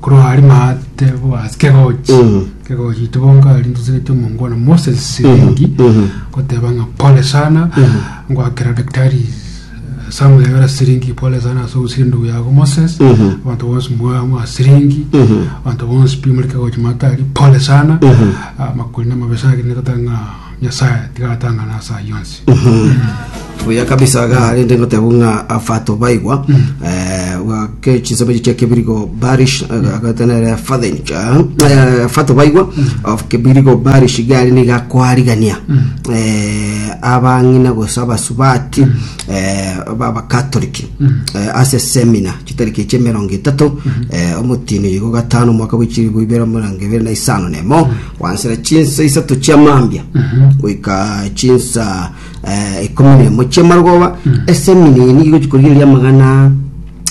Korwa ari maate boas kegochi Mhm. kegochi tibonka ari ndosegete omongwana moses siringi mhm. goteba ng'a pole sana ngwakera daktari eh, samuel ebera siringi pole sana ase ogosira endugu yago moses Mhm. abanto bonsi mwa mwa siringi Mhm. abanto bonsi pi muri kegochi maate ari pole sana Mhm. Ah, makuri na mabesa agende goteba ng'a Nyasae tigatang'ana ase ayio onsi. buya kabisa ga rende ngoteba ng'a afato baigwa eh, wake chinsemo echi chia kebirigo barish agatenere fathench eh, fato baigwa of kebirigo barish gari niga kwarigania eh, abang'ina gosa abasubati eh, babakatoliki eh, ase semina chitariki echi emerongo etato eh, omotini igo gatano omwaka bw'echiribu ibere mirongo ibere na isano nemo kwansera chinsa isato chia mambia goika chinsa eh, ikomi na emo chia marogoba ese eminini igochi koria eria amagana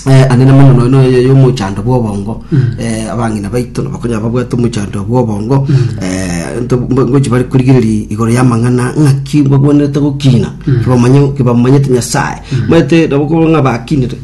eh, ane na magana nono yo- yomochando bw'obongo eh, abang'ina baito nabakonya babwate omochando bw'obongo eh, nto- mbo- ngochi bari korigereria igoro y'amang'ana ng'aki mbagwenerete gokina kibamanye- kibamanyete nyasaye maete nabo korwa ng'a bakinire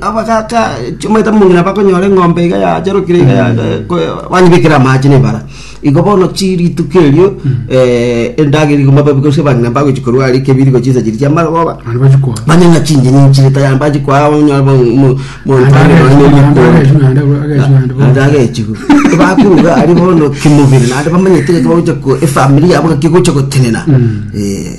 Abagaaka chimaete mong'ina bakonyora eng'ombe iga yacharokire iga banyebekire amache na ebara. Igo bono chi rituko erio endagera igoma babe gose abang'ina mbagochi korwa aria ekebiri gochia inse chiria chia amagoba. Banywe ng'a chinchene nchire tayari mbachi koa onyore mo- mo- naende agechigwa. Bakorwa iga aria bono kimobere naende bamenyete ng'aki bagocha ko efamiri yabo ng'aki egocha gotenena eh.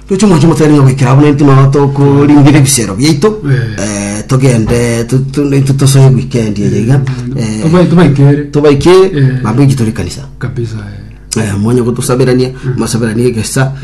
Toche mwanche motari ng'a goikera abwo naintwe nao tokoringira ebisero biaito eh, togende tu- tu- naintwe tosoe weekend eye iga eh, Tobai- tobaikere tobaikere Eh. mambo inche tore kanisa kabisa eh. Eh, mwanya gotosaberania masaberanie egesa